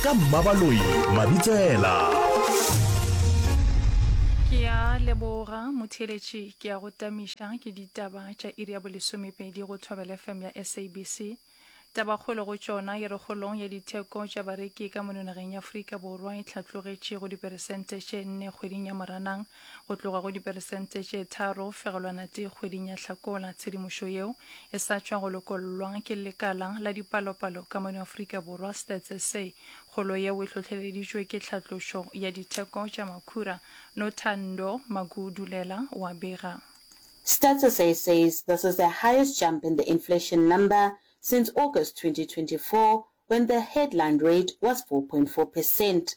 ka mmabaloi mabitsela ke ya leboga motheeletši ke ya go tamiša ke ditaba tša iri ya bolesomepedi go thobela fm ya sabc tabakgolo go tšona e re golong ya ditheko tša bareki ka mononageng ya aforika borwa e tlhatlogetše go diperesente tše nne kgweding ya moranang go tloga go diperesente tše tharo fegelwana tee kgweding ya Hlakola. Tshedimošo yeo e sa tšwa go lokollwa ke lekala la dipalopalo ka mono Afrika Borwa, Stats SA. Kgolo yeo e hlohleleditšwe ke tlhatlošo ya ditheko tša makhura, Nothando Magudulela o a bega. Stats SA says this is the highest jump in the inflation number since August 2024 when the headline rate was four point four percent.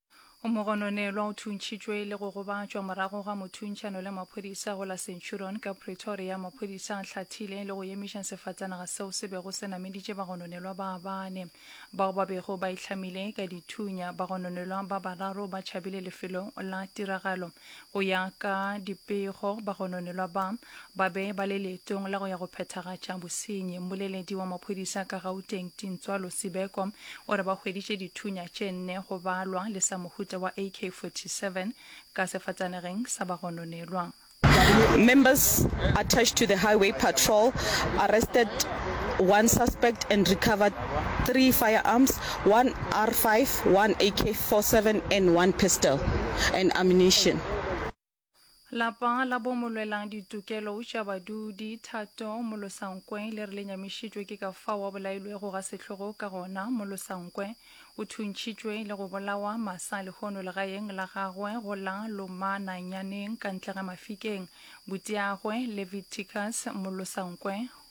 O mogononelwa o thuntšhitšwe le go gobatšwa morago ga mothuntšano le maphodisa go la Centurion ka Pretoria. Maphodisa a hlathile le go emiša sefatanaga seo se bego se nameditše bagononelwa ba bane bao ba bego ba itlhamile ka dithunya. Bagononelwa ba bararo ba tšhabile lefelo la tiragalo. Go ya ka dipego, bagononelwa ba, ba be ba le leetong la go ya go phethagatša bosenyi. Mmoleledi wa maphodisa ka Gauteng, Tintswalo Sibeko, o re ba hweditše dithunya tše nne go balwa le sa mohuta wa AK-47 ka sefatanageng sa bagononelwa. Members attached to the highway patrol arrested one suspect and recovered three firearms, one R five, one AK four seven and one pistol and ammunition. Lapa la bo molwelang ditokelo tša badudi, Thato Molosankwe, le re le nyamišitšwe ke ka fao a bolailwego ga sehlogo ka gona. Molosankwe o thuntšhitšwe le go bolawa masa lehono legaeng la gagwe go la Lomananyaneng ka ntle ga Mafikeng. Butiagwe, Leviticus Molosankwe,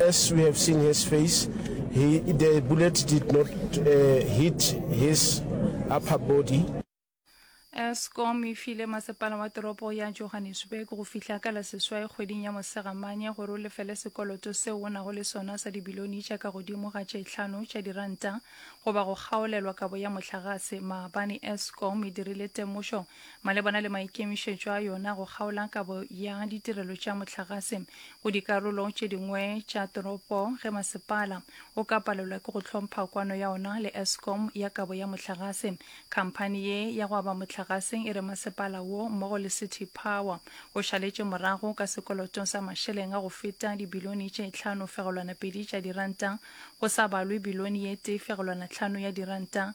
As we have seen his face, he, the bullet did not uh, hit his upper body. escom e file masepala wa toropo ya johannesburg go fihla ka la seswai kgweding ya mosegamanye gore o lefele sekoloto seo o nago le sona sa dibilione tša ka godimo ga tše tlhano tša diranta goba go kgaolelwa kabo ya mohlagase maabane escom e dirile temošo Malebana le maikemišetšo a yona go kgaola kabo ya ditirelo tša mohlagase go dikarolo tše dingwe tša toropo ge masepala o ka palelwa ke go hlompha kwano ya ona le Eskom ya kabo ya mohlagase, khamphani ye ya go aba mohlagaseng e re masepala wo mmogo le City Power o šaletše morago ka sekoloto sa mašeleng a go feta dibilione tše tlhano fegelwana pedi tša diranta go sa balwe bilione ye tee fegelwana tlhano ya diranta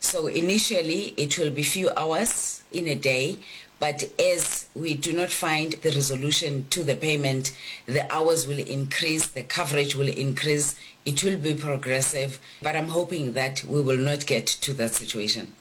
So initially it will be few hours in a day but as we do not find the resolution to the payment the hours will increase, the coverage will increase, it will be progressive but I'm hoping that we will not get to that situation.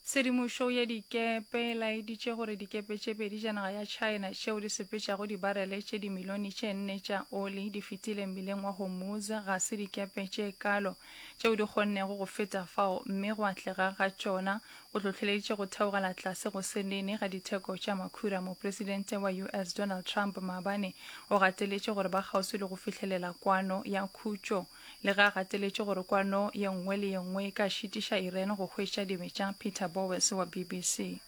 Tshedimošo ya dikepe e laeditše gore dikepe tše pedi tša naga ya China tšeo di sepetšago dibarele tše dimilione tše nne tša oli di fetile mmileng wa Hormuz ga se dikepe tše kalo. tšeo di kgonnego go feta fao, mme go atlega ga tšona go hlohleleditše go theogela tlase go se nene ga ditheko tša makhura. Mopresidente wa US. Donald Trump maabane o gateletše gore ba kgauswi le go fihlelela kwano ya khutšo, le ge a gateletše gore kwano ye nngwe le ye nngwe e ka šitiša Iran go hwetša dibetša. Peter Bowes wa BBC.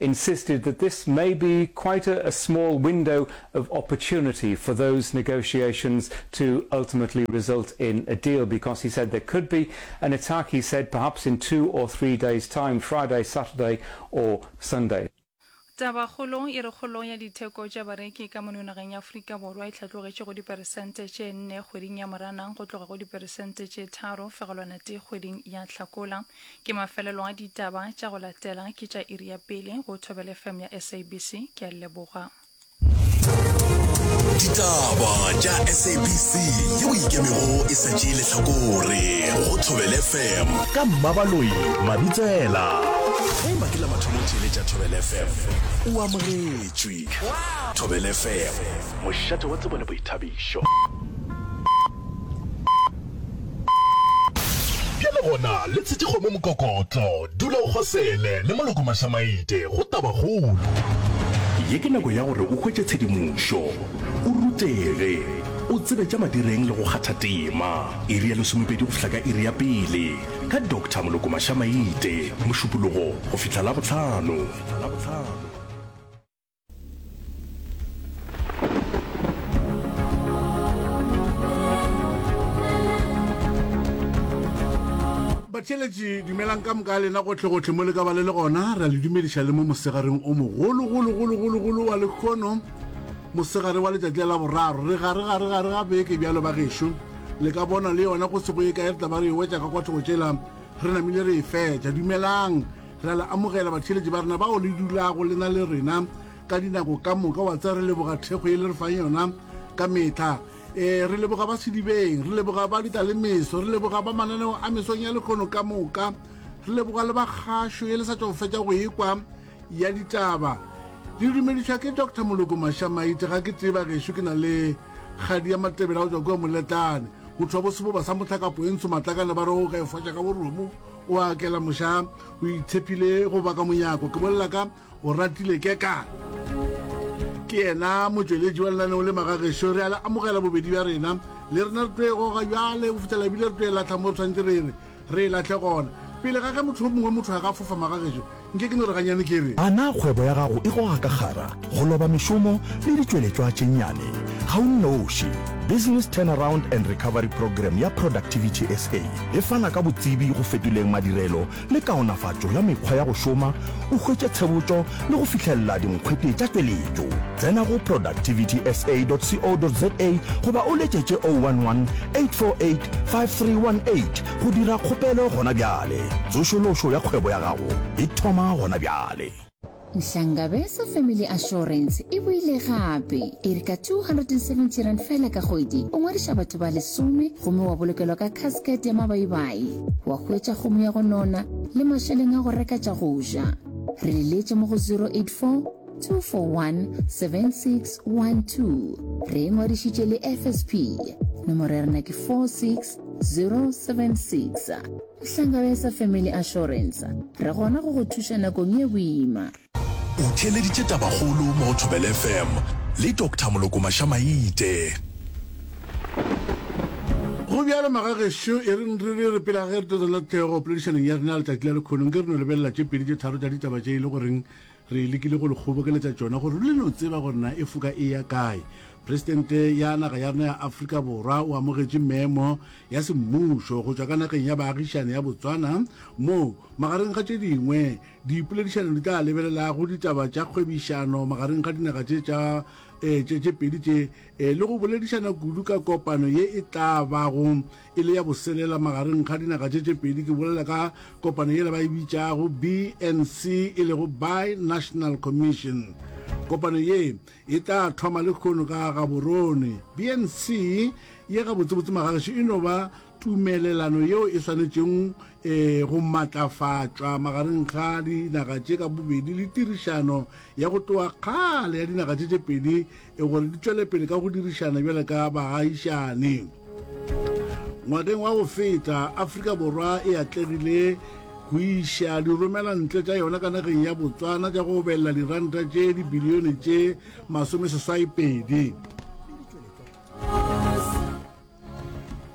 insisted that this may be quite a, a small window of opportunity for those negotiations to ultimately result in a deal because he said there could be an attack, he said, perhaps in two or three days' time, Friday, Saturday or Sunday. Tabakgolo e re kgolo ya ditheko tša bareki ka mono nageng ya Afrika Borwa e hlatlogetše go diperesente tše nne kgweding ya Moranang go tloga go diperesente tše tharo fegelwana tee kgweding ya Hlakola. Ke mafelelo a ditaba tša go latela ke tša iri ya pele go Thobele FM ya SABC. Ke a leboga. Ditaba tša SABC yeo e ikemego e sa tšee lehlakore go Thobele FM ka Mmabaloi Mabitsela. Ge e ba ke la mathomo theeletša Thobele FM, o amogetšwe. Thobele FM, mošate wa tsebo le boithabišo. Bjale gona, le tshetše kgomo mokokotlo. Dula o kgosele, le moloko mašamaite. Go tabakgolo. Ye ke nako ya gore o hwetše tshedimošo, o rutege, o tsebe tša madireng le go kgatha tema. Iri ya lesomepedi go fihla ka iri ya pele, ka Doctor Moloko Mašamaite, Mošupologo go fihla Labohlano. batheletši dumelang ka moka lena gotlhegotlhe mo le ka ba le le gona ra le dumediša le mo mosegareng o mogologologologologolo wa lekgono mosegare wa letšatši la boraro re gare gare gare ga beke bjalo ba gešo le ka bona le yona go se go e kae re tla ba re e wetša ka kwathogo tšela re namile re e fetša dumelang Ra le amogela batheeletši ba rena bao le dulago le na le rena ka dinako ka moka wa tse re leboga thekgo ye le re fang yona ka metlha um re leboga ba sedibeng re leboga ba dita le meso re leboga ba mananeo a mesong ya lekgono ka moka re leboga le ba kgašo ye le sa tšwa go fetša go ekwa ya ditaba di dumedišwa ke dr moloko mašamaite ga ke tseba gešo ke na le kgadi ya matebela go tswa kua moletlane go thwa boseboba sa motlhakapo e ntsho matlakane ba re o ga e fwatša ka boromo O a kela moša, o itshepile go ba ka monyako. Ke bolela ka o ratile kekana. Ke yena motšweletši wa lenaneo le magagešo re a le amogela bobedi bja rena le rena re tloe goga bjale go fitela ebile re tloe latlha mo re tshwanetse re re re e latlhe gona pele ga ge motho o mongwe motho a ka fofa magagešo Nke ke no re ganyane ke re. A na kgwebo ya gago e goga ka kgara, go loba mešomo le ditšweletšwa tše nnyane? Ga o nnoši. Business Turnaround and Recovery Programme ya Productivity SA e fana ka botsebi go fetoleng madirelo le kaonafatšo ya mekgwa ya go šoma, o hwetše tshebotšo le go fihlelela dinkgwete tša tšweletšo. Tsena go productivitysa.co.za goba o letšetše 011 848 5318 Go dira kgopelo gona bjale. Tsošološo ya kgwebo ya gago e thoma gona bjale. Nhlangabeza Family Assurance e boile gape, e re ka R270 fela ka kgwedi o ngwadiša batho ba lesome gomme wa bolokelwa ka casket ya mabaibai, wa hwetša kgomo ya go nona le mašeleng a go reka tša go ja. Re leletše mo go 084 2417612 re e ngwadišitše le fsp nomoro ya rena ke 46076 nhlanga ya sa family assurance re gona go go thuša nakong ye boima o theeleditše tabakgolo mo go thobele fm le dr moloko mašamaite go bjalo magagešo e reng re re re pela ge re tla tswela thego poledišaneng ya rena letšatši la lekhonong ke re no lebelela tše pedi tše tharo tša ditaba tše e le goreng Re lekile go le kgobokeletša tšona gore le no tseba gore na e foka e ya kae. Presidente ya naga ya rena ya Afrika Borwa o amogetše memo ya semmušo go tšwa ka nageng ya baagišane ya Botswana moo magareng ga tše dingwe dipoledišano di tla lebelelago ditaba tša kgwebišano magareng ga dinaga tše tša eh, tše pedi tše eh, le go boledišana kudu ka kopano ye e tla bago e le ya boselela magareng ga dinaga tše tše pedi, ke bolela ka kopano yela ba e bitšago BNC e lego Bi-National Commission. Kopano ye e tla thoma le khono ka Gaborone. BNC ye gabotsebotse magageši e no ba tumelelano yeo e swanetšeng e go matlafatšwa magareng ga dinaga tše ka bobedi le tirišano ya go tloga kgale ya dinaga tše tše pedi e gore di tšwele pele ka go dirišana bjale ka bagagišane. Ngwakeng wa go feta, Afrika Borwa e atlegile go iša diromela ntle tša yona ka nageng ya Botswana tša go obelela diranta tše dibilione tše masomeseswaipedi.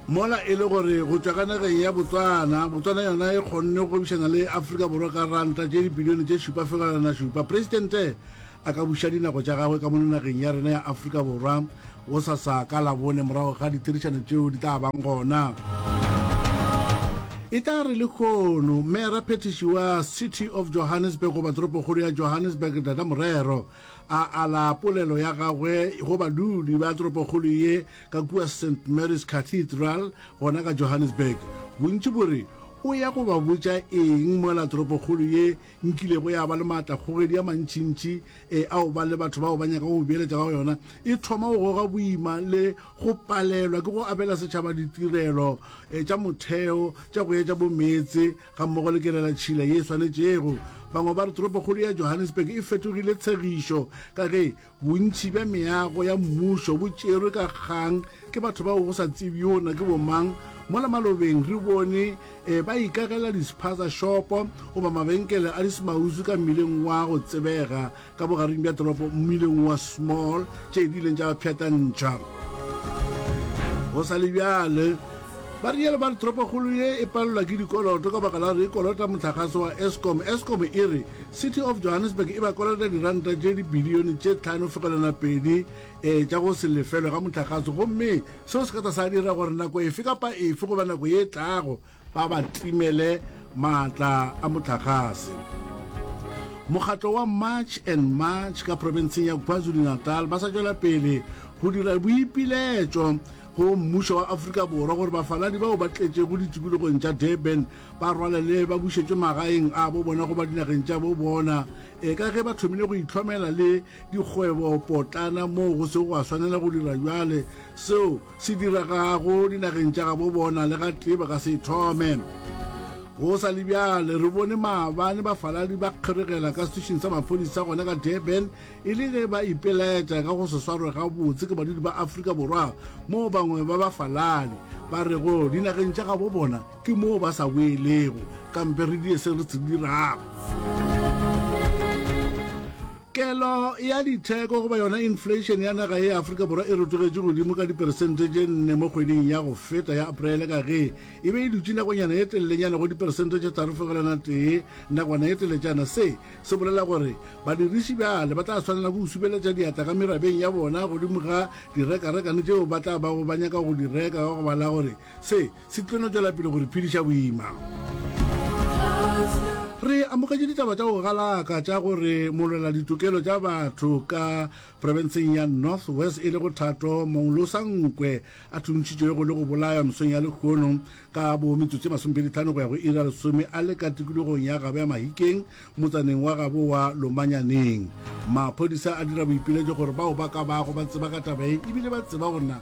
Mola e le gore go tšwa ka nageng ya Botswana, Botswana yona e kgonne go gwebišana le Afrika Borwa ka ranta tše dibilione tše šupa fegelwana šupa, Presidente a ka buša dinako tša gagwe ka mono nageng ya rena ya Afrika Borwa gosasa ka Labone morago ga ditherišano tšeo di tla bang gona. E tla re lekgono mera phethiši wa city of johannesburg goba toropokgolo ya johannesburg data morero a ala polelo ya gagwe go badudi ba toropokgolo ye Ka kua St. Mary's Cathedral gona ka Johannesburg, bontši bo re, O ya go ba botša eng mola toropokgolo ye nkilego ya ba le maatlakgogedi a mantšintši e a go ba le batho bao ba nyakago go beeletša ka go yona e thoma go goga boima le go palelwa ke go abela setšhaba ditirelo tša motheo tša go etša bo meetse gammogo le kelelatšhila ye e swanetšego? Bangwe ba re toropokgolo ya Johannesburg e fetogile tshegišo ka ge Bontši bja meago ya mmušo bo tšerwe ka kgang ke batho bao go sa tsebjona ke bomang. Mola malobeng re bone e, ba ikagela dispaza shopo goba mabenkele a dismausu ka mmileng wa go tsebega ka bogareng bja toropo, mmileng wa Small, tše di ileng tša ba pšhatantšha. Go sa le bjale, ba rialo ba re toropokgolo ye e palelwa ke dikoloto ka baka la gore e kolota mohlagase wa Eskom. Eskom e re City of Johannesburg e ba kolota diranta tše dibilione tše tlhano fegelwana pedi ee tša go se lefelwe ga mohlagase gomme seo se ka tla sa dira gore nako efe kapa efe goba nako ye e tlago ba ba timele maatla a mohlagase. Mokgatlo wa March and March ka profenseng ya KwaZulu-Natal ba sa tšwela pele go dira boipiletšo go mmušo wa Afrika Borwa gore bafaladi bao ba tletšego ditikologong tša Durban ba rwalele ba bušetšwe magaeng a bo bona goba dinageng tša bo bona e ka ge ba thomile go itlhomela le dikgwebo potlana moo go sego gwa swanela go dira bjale seo se diragago dinageng tša ga bo bona le ga tee ba ka se thome go sa le bjale re bone maabane bafaladi ba kgeregela ka setišing sa maphodisa gona ka durban e le ge ba ipeletša ka go se swarwe gabotse ke badudi ba afrika borwa moo bangwe ba bafaladi ba rego dinageng tša gabo bona Ke moo ba sa boelego, kampe re die se re se dirago. Kelo ya ditheko goba yona inflation ya naga e Afrika Borwa e rotogetše godimo ka diperesente tše nne mo kgweding ya go feta ya Aprele ka ge e be e dutše nakonyana ye telelenyana go diperesente tše tharo fegelwana tee nakwana ye teletšana. Se se bolela gore badiriši bjale ba tla swanela go subeletša diatla ka merabeng ya bona godimo ga direkarekane tšeo ba tla bago ba nyaka go di reka ka go bala gore se Se tlo no tšwela pele go re phediša boima. Re amogetše ditaba tša go galaka tša gore molwela ditokelo tša batho ka profenseng ya North West e le go Thato Monglosa Nkwe a thuntšhitšwe go le go bolaywa mesong ya lekgono ka bo metsotso e masomepedi-tlhano go ya go ira lesome a le ka tikologong ya Gabo ya Mahikeng motsaneng wa Gabo wa Lomanyaneng. Maphodisa a dira boipiletšo gore bao ba ka bago ba tseba ka taba ye ebile ba tseba gore na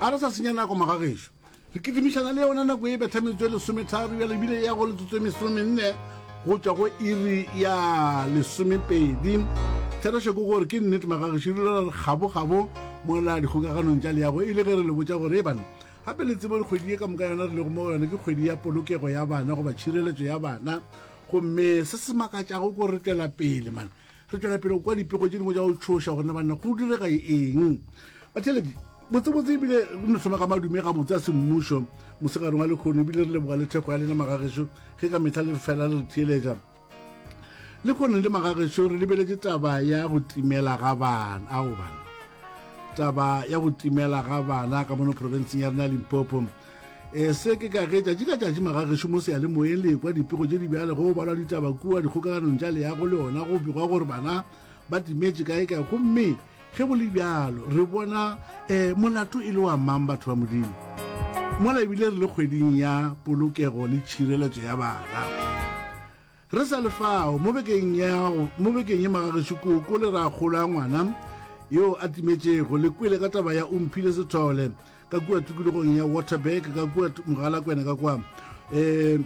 a re sa senya nako magagešo re kitimišana le yona nako e betha metsotso e lesometharo ya lebile ya go letsotso e mesomenne go tšwa go iri ya lesomepedi therešo ke gore ke nnete magagešo di lora kgabokgabo mola dikgokaganong tša leago e le ge re le botša gore e bana gape le tsebo kgwedi e ka moka yona re lego mo go yone ke kgwedi ya polokego ya bana goba tšhireletso ya bana gomme se se makatšago ko retela pele mana Re tšwela pele go kwa dipego tše dingwe tša go tšhoša gona banna go direga eng. Batheletši, botsebotse ebile re no thoma ka madume gabotse a semmušo mosegare wa lekgono ebile re leboga le thekgo ya lena magagešo ge ka mehla le re fela le re theeletša. Lekgono le magagešo re lebeletše taba ya go timela ga bana ao bana taba ya go timela ga bana ka mono profenseng ya rena ya Limpopo. e se ke ka ge tšatši ka tšatši magagešo mo seyalemoyeng le ekwa dipego tše di bjale go balwa ditaba kua dikgokaganong tša leyago le ona go begwa gore bana ba timetše kae kae gomme ge go le bjalo re bona um molato e le wa mang batho ba modimo mola ebile re le kgweding ya polokego le tšhireletso ya bana Re sa le fao, mo bekeng ya go, mo bekeng ye magagešo koko le ragolo a ngwana yoo a timetšego le kwele ka taba ya o mphile sethole ka kua tikologong ya Waterberg ka kua Mogalakwena ka kwa um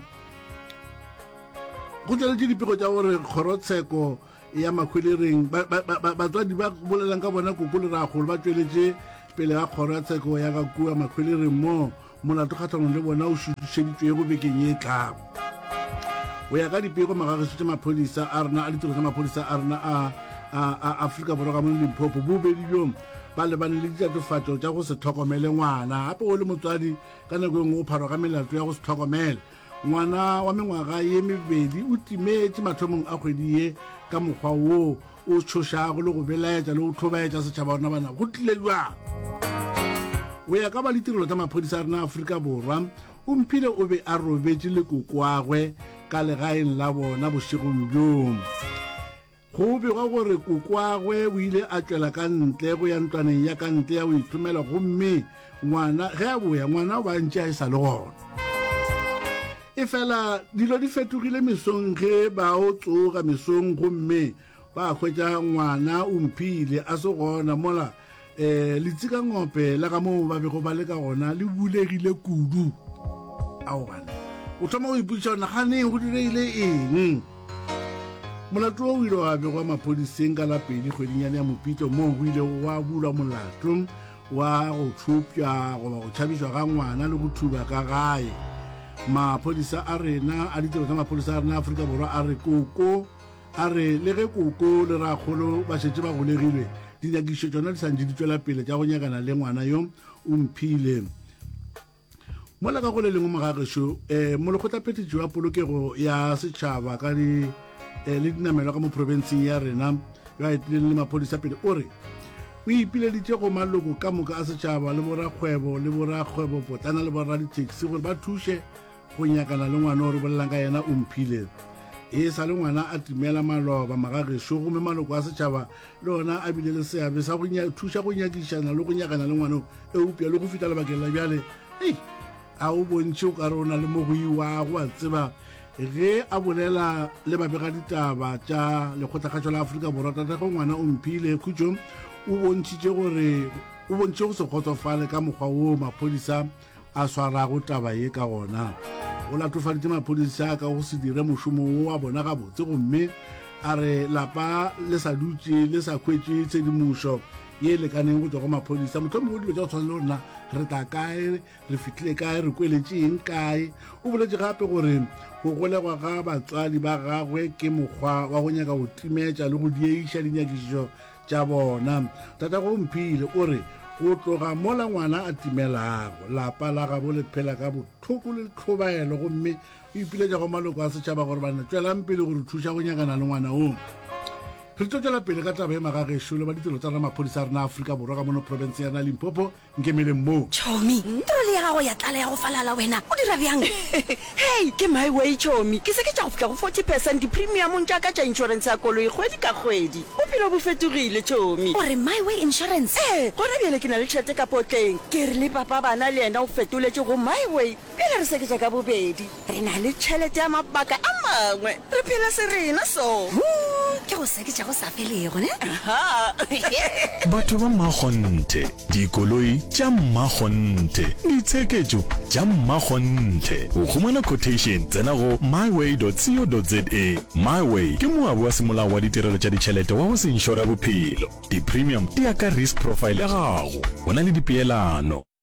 go tšweletše dipego tša gore kgorotsheko ya makhwelereng batswadi ba bolelang ka bona koko le ragolo ba tšweletše pele ga kgoro ya tsheko ya ga kua makhwelereng moo Molato kgahlanong le bona o šutišeditšwego bekeng ye e tlago. Go ya ka dipego, magageso tša maphodisa a rena a ditiro tša maphodisa a rena a a Afrika Borwa ka mo Limpopo bobedi bjong ba lebane le ditatofatšo tša go se tlhokomele ngwana. Gape o le motswadi ka nako e nngwe o pharwa ka melato ya go se tlhokomele ngwana wa mengwaga ye mebedi o timetše mathomong a kgwedi ye ka mokgwa woo o tšhošago le go belaetša le go tlhobaetša setšhaba ona bana go tlile jwang go ya ka ba ditirelo tsa maphodisa a rena aforika borwa o mphile o be a robetše le kokoagwe ka legaeng la bona bošegong bjong go begwa gore kokoagwe o ile a tšwela ka ntle go ya ntlwaneng ya ka ntle ya go ithomela gomme ngwana ge a boya ngwana o ba ntše a e sa le gona e fela dilo di fetogile mesong ge ba o tsoga mesong gomme ba hwetša ngwana o mphile a se gona mola um letsika ngope la ga moo ba bego ba le ka gona le bulegile kudu aobane o thoma go ipotsiša gona ganeng go direile eng molato o ile wa begwa maphodiseng ka la pedi kgwedinyane ya mopitlo moo go ile wa bulwa molato wa go tšhupša goba go tšhabišwa ga ngwana le go thuba ka gae maphodisa a rena a ditiro tsa maphodisa a rena aforika borwa a re koko a re le ge koko le rakgolo ba šetse ba golegilwe dinyakišo tsona di santse di tswela pele tša go nyakana le ngwana yo o mphile mola ka go le lengwe mogagešo um eh, molekgotlaphethišo ya polokego ya setšhaba ka di eh, le dinamelwa ka mo profenseng ya rena yo a etileng le maphodisa pele o re o ipileditše go maloko ka moka a setšhaba le borakgwebo le borakgwebopotlana le boraditaxi gore ba thuše go nyakana le ngwana o re bolelang ka yena o mphile e sa le ngwana a timela maloba magagešo gomme maloko a setšhaba le ona a bile le seabe sa go thuša go nyakišana le go nyakana le ngwaneo eupša le go fita lebakeng la bjale ei a o bontšhe o ka re o na le mo go iwago a tseba ge a bolela le babegaditaba tša lekgotlakgatšo la aforika borwa tatego ngwana o mphile khutšong o bontšhitše gore o bontšhe go se kgotsofale ka mokgwa woo maphodisa a swarago taba ye ka gona o latofaditše maphodisa ka go se dire mošomo wo wa bona gabotse gomme a re lapa le sa dutše le sa hwetše tshedimošo ye e lekaneng go tswa go maphodisa motlhomi o dilo tša go tshwana le gorena re tla kae re fitlhile kae re kweletšeeng kae o boletše gape gore go golegwa ga batswadi ba gagwe ke mokgwa wa go nyaka go timetša le go dieiša dinyakišišo tša bona. Tatago o mphile, o re, Go tloga mola ngwana a timelago, lapa la gabo le phela ka bohloko le tlhobaelo gomme o ipiletša go maloko a setšhaba gore ba ne tšwelang pele go re thuša go nyakana le ngwana woo. Re tlo tšwela pele ka taba e magagešo le ba ditiro tsa ramaphodisa a rena Afrika Borwa ka mono profenseng ya rena Limpopo Nkemeleng moo. Chomi, trole ya gago ya tlala ya go falala wena o dira bjang? Hei, ke my way Chomi, ke seketša go fihla go forty percent dipremiumong tša ka tša insurance ya koloi kgwedi ka kgwedi. Bophelo bo fetogile Chomi. O re my way insurance? Ee, gona bjale ke na le tšhelete ka potleng. Ke re le papa bana le yena o fetoletše go my way. Pele re seketša ka bobedi, re na le tšhelete ya mabaka a mangwe. Re phela serena so. Hoo ke go seketša go sa felego, ne? Aha! Batho ba mmakgonthe, dikoloi tša mmakgonthe, ditsheketšo tša mmakgonthe. Go humana quotation, tsena go myway.co.za. Myway ke moabi wa semolao wa ditirelo tša ditšhelete wa go se inšore bophelo. Di-premium di ya ka risk profile ya gago. Go na le dipeelano.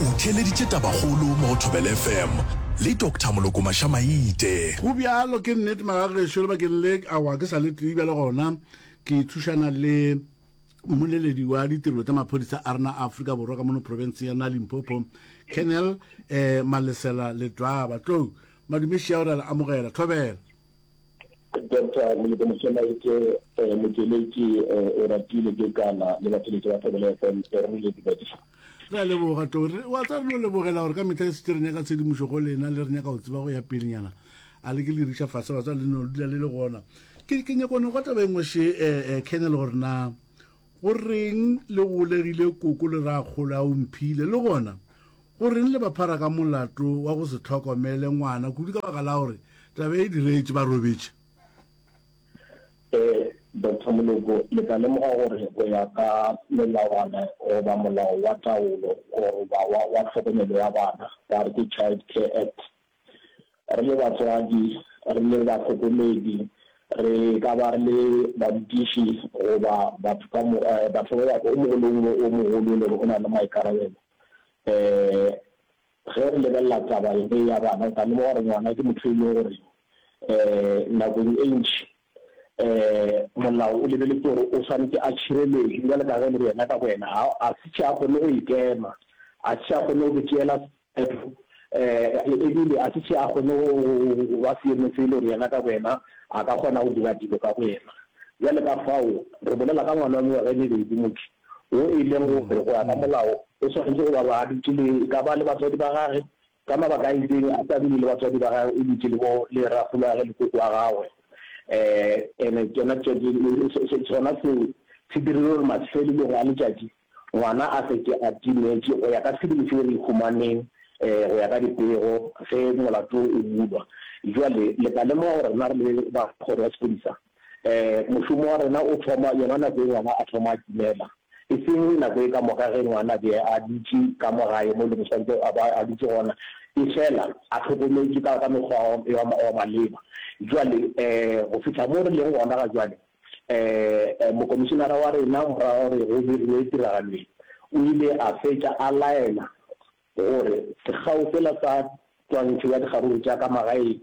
O theeleditše tabakgolo mo go Thobela FM le Doctor Molokomasha Maite. Go bjalo ke nnete maga gešo lebakeng le awa ke sa le tee bjale gona ke thušana le mmoleledi wa ditirelo tša maphodisa a rena a Afrika Borwa ka mono profenseng ya na Limpopo Colonel eh, Malesela Letwaba tlou madumeši ao re a le amogela Thobela Doctor Moleko Mosemaetše, eh, motšweletši, eh, o ratile ke kana le batšweletši ba Thobela FM, eh, re le dumediša. Re a leboga to re wa tsa re no lebogela gore ka mehla e setse re nyaka tshedimošo go lena le re nyaka go tseba go ya pelenyana a le ke le riša fase ba tsa le no dula le le gona ke ke nyakone go taba engwe she eh, eh, kennel gore na Go reng le golegile koko le rakgolo a o mphile? Le gona, go reng le ba phara ka molato wa go se tlhokomele ngwana kudu ka baka la gore taba e diretše ba robetše? Ee, Doctor Moloko, le tla lemoga gore go ya ka melawana goba molao wa taolo goba wa tlhokomelo ya bana, ba re ke Child Care Act, Re le batswadi, re le bahlokomedi, re ka ba re le barutiši goba batho ka moka, batho ba ba, o mongwe le o mongwe o mogolo e le gore o na le maikarabelo. Ge re lebelela taba ye ya bana, o tla lemoga gore ngwana ke motho e leng gore nakong e ntši molao o lebeletse gore o swanetše a tšhireletšwe bjale ka ge e le gore yena ka boyena ga a se hle a kgone go ikema, ga se hle a kgone go tšeela Petro, e bile a se še a kgone go ba seemo se e lego yena ka boyena a ka kgona go dira dilo ka boyena. Bjale ka fao re bolela ka ngwana wa mengwaga e mebedi, motho wo e lego gore go ya ka molao o swanetše go ba ba a dutše le, e ka ba le batswadi ba gagwe, ka mabaka a itseng a sa dule le batswadi ba gagwe, o dutše le bo, le rragolwagwe le koko wa gagwe. Ee, and-e tšona tšo, sona seo se dirile gore mafelelong a letšatši ngwana a se ke a timetše go ya ka sebele seo re ihumaneng go ya ka dipego ge molato o bulwa. Bjale le ka lemoga gore rena re le ba kgoro ya sepodisa mošomo wa rena o thoma yona nako ye ngwana a thoma a timela, e seng nako e ka moka ge ngwana be a dutše ka mo gae mo e lego swantšwe a ba a dutše gona efela a hlokometše ka mekgwa wa maleba. Bjale go fihla mo re leng gona ga bjale Ee, mokomišenara wa rena morago ga gore go dirilwe tiragalo ye, o ile a fetša a laela gore sekgao sela sa twantšho ya dikgaruru tša ka magaeng,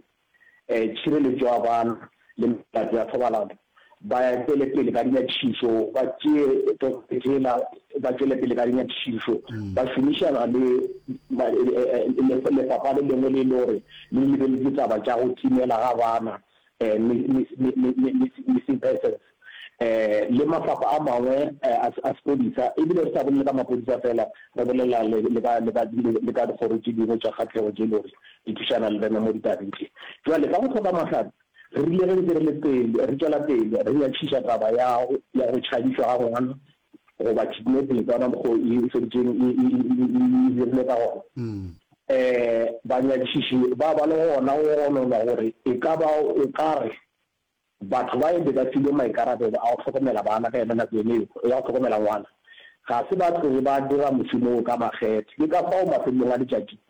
tšhireletšo ya bana le melato ya thobalano ba tšwele pele ka dinyakišišo, ba tšee toka yela ba tšwele pele ka dinyakišišo ba šomišana le lefapha le lengwe le e lego gore le lebeletše taba tša go timela ga bana missing persons, le mafapha a mangwe a sepodisa, e bile re sa bolele ka mapodisa fela, re bolela le ka dikgoro tše dingwe tša kgahlego tše e lego gore di thušana le rena mo ditabeng tše. Bjale, ka go hloka mahlare, re rile ge ntse re le pele, re tšwela pele re nyatšiša taba ya go tšhabišwa ga ngwana goba kidnapping ka ona mokgwa o e feditšeng e dirile ka gona um banyadišiši ba ba le gona go gononwa gore e ka ba o ka re batho ba e be ba filwe maikarabelo a go hlokomela bana ka yona nako ene eo ya go hlokomela ngwana ga se ba tloge ba dira mošomo o ka makgethe ke ka fao mafelelong a letšatši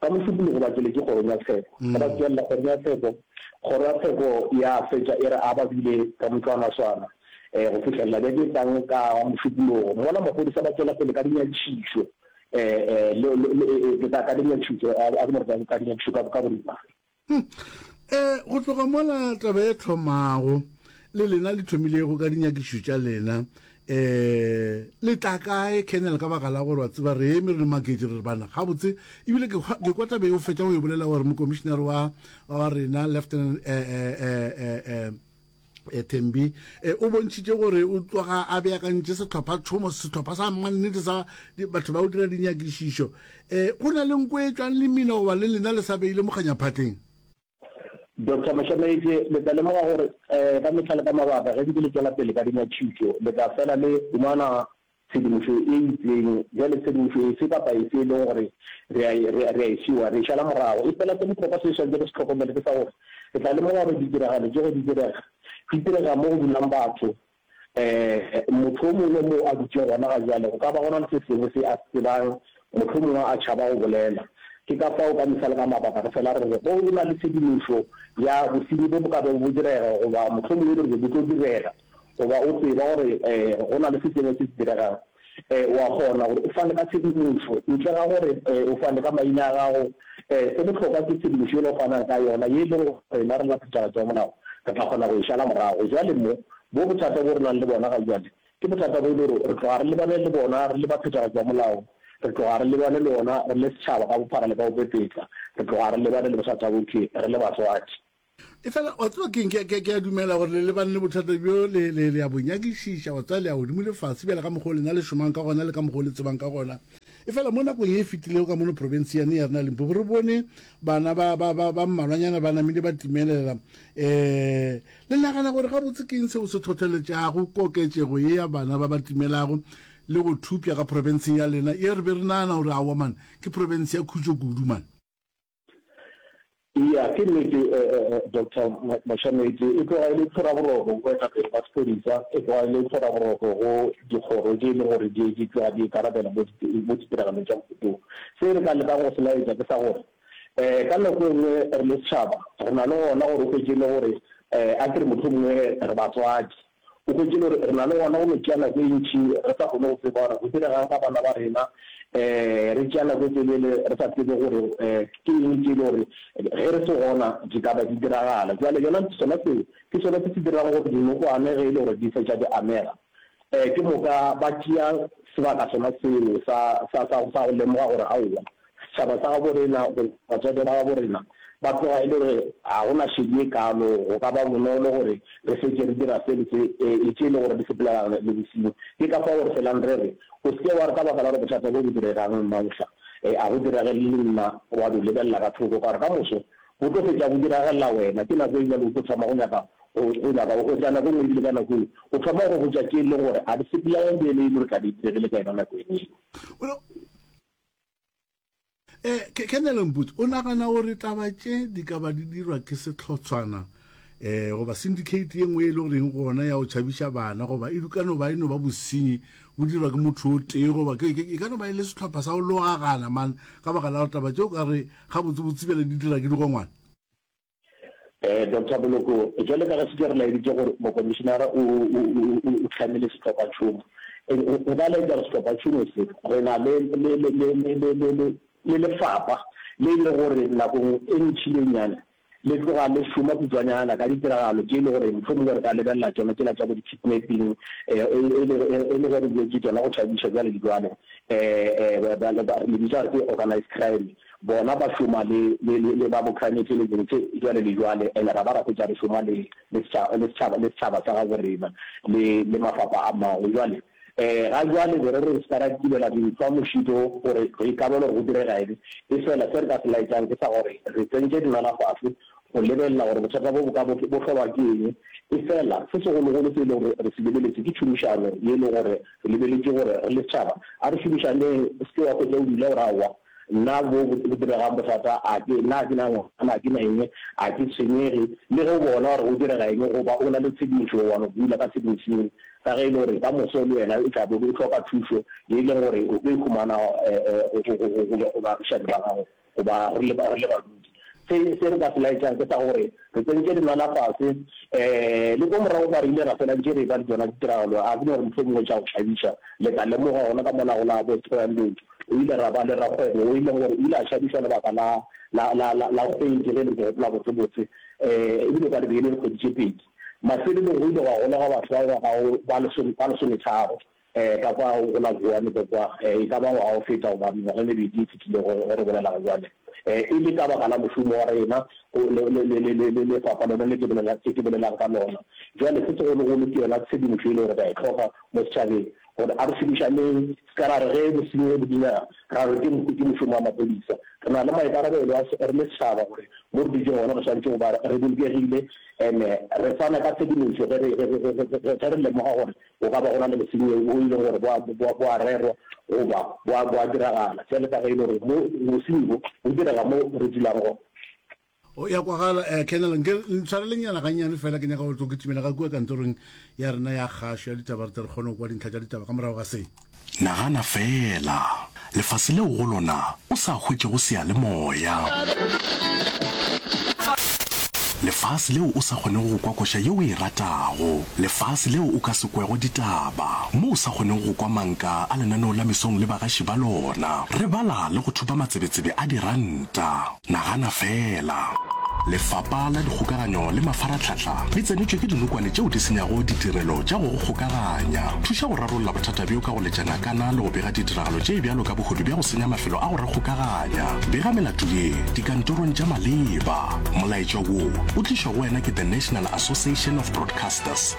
Ka mošupologo ba tšwele ke kgorong ya tsheko. Ge ba tšwelela kgorong ya tsheko, kgoro ya tsheko ya fetša e re a ba bile ka motlwanaswana go fihlelela beke e tlang ka mošupologo. Mola maphodisa ba tšwela pele ka dinyatšišo ka dinyatšišo ka boripana. Hm, e, go tloga mola taba e thomago le lena le thomilego ka dinyakišo tša lena eh le tla kae kennel ka baka la gore wa tseba re eme re le maketše re re bana gabotse ebile ke kwa tabe o fetša go e bolela gore mokomišenare wa wa rena lieutenant eh eh eh eh, eh Thembi o bontšhitše gore o tloga a beakantše sehlopha-tšhomo, sehlopha sa mannete sa batho ba go dira dinyakišišo. Go na le nko e tšwang le mmina goba le lena le sa beile mokganyaphatleng? Doctor Moshoneitše, Le tla lemoga gore ka mehla le ka mabaka ge ntse le tšwela pele ka dinyakišišo le tla fela le humana tshedimošo e itseng. Bjale, tshedimošo efe kapa efe e lego gore re a e, re, re a e fiwa, re e šala morago. Efela se bohlokwa se re swanetšego go se hlokomele ke sa gore re tla lemoga gore ditiragalo tšogo di direga, di direga mo go dulang batho. Um, motho o mongwe moo a dutšego gona ga bjale, go ka ba go na le se sengwe se a se tsebang, mohlomongwe a tšhaba go bolela. Ke ka fao, ka mehla le ka mabaka, re fela re re, Go na le tshedimošo ya bosenyi bo bo ka bego bo direga, goba mohlomongwe re re bo tlo direga. goba o tseba gore go na le se sengwe se se diregang, o a kgona gore o fane ka tshedimošo ntle ga gore o fane ka maina a gago. Se bohlokwa ke tshedimošo yela o fanang ka yona, ye e lego gore rena re le baphethagatši ba molao re tla kgona go e šala morago. Bjale mo, bo bothata bjo re nang le bona ga bjale ke bothata bjo e le gore re tloga re lebane le bona re le baphethagatši ba molao, re tloga re lebane le ona re le setšhaba ka bophara le ka go pepetla, re tloga re lebane le bothata bjo ke re le batswadi. Efela, wa tseba keng, ke, ke, ke a dumela gore le lebane le bothata bjo, le, le, le a bo nyakišiša, wa tseba, le ya godimo le fase, bjale ka mokgwa o lena le šomang ka gona le ka mokgwa o le tsebang ka gona. Efela mo nakong ye e fetilego ka mono probensianeng ya rena ya Limpopo, re bone bana ba, ba, ba, ba mmalwanyana ba namile ba timelela. Um, le nagana gore gabotse ke eng seo se thotheletšago koketšego ye ya bana ba ba timelago le go thopša ka profenseng ya lena ye re be re nagana gore, aowa man, ke profense ya khutšo kudu man? Eya, ke nnete Doctor Mashamaetsi, e tloga e le tshweraboroko go baetapele ba sepodisa, e tloga e le tshweraboroko go dikgoro tše e leng gore di di tloga di ikarabela mo mo ditiragalong tša mohuta wo. Se re ka lekang go se laetša ke sa gore um ka nako e nngwe re le setšhaba re na le gona gore o hwetše e le gore a ke re mohlomongwe re batswadi, O hwetše gore re na le gona go no tšea nako e ntši re sa kgone go tseba gore go diregang ka bana ba rena, re tšea nako e telele re sa tsebe gore ke eng tše e le gore ge re se gona di ka ba di diragala. Bjale yona sona seo ke sona se se dirago gore dinokwane ge e le gore di fetša di amega, ke moka ba tšea sebaka sona seo sa go lemoga gore aowa Setšhaba sa gabo rena goba batswadi ba gabo rena ba tloga e le gore ga go na šedi e kalo, go ka ba bonolo gore re fetše re dira se le se, le tše e lego gore di sepelela le bosenyi. Ke ka fao re felang re re, O se ke wa re ka baka la gore bothata bjo bo diregang mafsa, a go diragele le nna, wa no lebelela ka thoko, ka gore ka moso bo tlo fetša bo diragelela wena. Ke nako e bjalo o tlo thoma go nyaka go go nyaka go hwetša nako e nngwe e bile ka nako yeo o thoma go hwetša tše e lego gore ga di sepelelane le yena e le gore tla be e diregile ka yona nako yeno eo. E, Kenele Mputsi, o nagana gore taba tše di ka ba di dirwa ke sehlotshwana e, goba syndicate ye nngwe e le goreng gona ya go tšhabiša bana goba e ka no ba e no ba bosenyi bo dirwa ke motho o tee goba e ka no ba e le sehlopha sa go logagana man ka baka la gore taba tše o ka re gabotsebotse bjale di dira ke digongwana? Doctor Boloko, Bjale ka ge se ke re laeditše gore mokomišinara o hlamile sehlophatšhomo, re ka laetša gore sehlophatšhomo se, re na le lefapha le e le gore nakong e ntšhilenyane le tloga le šoma kutšwanyana ka ditiragalo tše e le gore mohlomongwe re ka lebelela tšona tšela tša bo di-kidnapping e le ge re bjotše tšona go tšhabiša bjale le bjale, re le bitša gore ke organized crime. Bona ba šoma le, le, le, le ba bokhranetše le dilo tše bjale le bjale, and ra ba rapetša re šoma le, le setšhaba, le setšhaba, le setšhaba sa gabo rena, le, le mafapha a mangwe. Bjale, ee, ga bjale be re re se ka ra tibela dintlhwa mošito gore re ikabele gore go direga eng, efela se re ka se laetšang ke sa gore re tsentše dinala fase go lebelela gore bothata bjo bo ka bo, bo hlolwa ke eng. Efela se segologolo se e lego gore re se lebeletše ke tšhomišano ye e lego gore re lebeletše gore re le setšhaba a re šomišaneng, o se ke wa hwetša o dula o re aowa, Nna boo bo se bo diregang bothata, a ke na, a ke na ngwana, a ke na eng, a ke tshwenyege le ge o bona gore go direga eng goba o na le tshedimošo, wa no bula ka sengwe seo, ka ge e le gore ka moso le wena o tla bo o hloka thušo ye e leng gore o tlo e humana go baagišani ba gago goba re le badudi. Se, se re ka se laetšang ke sa gore re tsentše dinwana fase, le ko morago kwa re ile ra fela ntše re e-ba le tšona ditiragalo, a ke no re mohlomongwe tša go tšhabiša le tla lemoga gona ka mola go la bo Spreeland, O ile ra ba le rakgwebo wo e leng gore o ile a šadišwa lebaka la, la, la, la, la kgwedi, ge e le ke gopola botsebotse, e, e bile kwa lebeine dikgwedi tše pedi. Mafelelong go ile gwa golega batho ba ba gago ba lesome, ba lesometharo, e, ka kwa go la Vuwani ko kwa, e, e ka ba ngwaga o feta goba mengwaga e mebedi e fetilego ge re bolela ga bjale, e, e le ka baka la mošomo wa rena go, le, le, le, le, le lefapa lona le ke bolela, le ke bolelang ka lona bjale. Se segologolo ke yona tshedimošo e le gore re a e hloka mo setšhabeng. gore a re šomišaneng, se ka ra re ge bosenyi bo dinyega ra re ke mpe ke mošomo wa maphodisa. Re na le maikarabelo a re le setšhaba gore mo re dutšeng gona re swanetše go ba re bolokegile and-e re fana ka tshedimošo ge re ge re lemoga gore go ka ba go na le bosenyi bo e leng gore bo a bo a rerwa goba bo a bo a diragala bjale ka ge e le gore mo bosenyi bo bo direga mo re dulang gona. O ya kwagala eh Colonel, nke le ntshwarele nyana gannyane fela ke nyaka go tlo kitimela ga kua kantorong ya rena ya kgašo ya ditaba re tle re kgone go kwa dintlha tša ditaba ka morago ga se. Nagana feela, lefase leo go lona o sa hwetšego seyalemoya. Lefase leo o sa kgonego go kwa koša ye o e ratago. Lefase leo o ka se kwego ditaba, mo o sa kgonego go kwa manka a lenaneo la mesong le bagaši ba lona. Re bala le go thupa matsebetsebe a diranta. Nagana feela! Lefapa la Dikgokaganyo le Mafaratlhatlha le tsenetšwe ke dinokwane tšeo di senyago ditirelo tša go go kgokaganya. Thuša go rarolla bothata bjo ka go letša ngakana le go bega ditiragalo tše bjalo ka bohodu bja go senya mafelo a go re kgokaganya. Bega melato ye dikantorong tša maleba. Molaetša wo o tlišwa go wena ke The National Association of Broadcasters.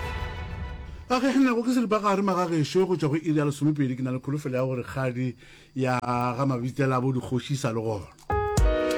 Ba kgekgennego ke seripagare magagešo go tšwa go iri ya lesomepedi ke na le kholofelo ya gore kgadi ya ga mabitsela bo dikgoši e sa le gona.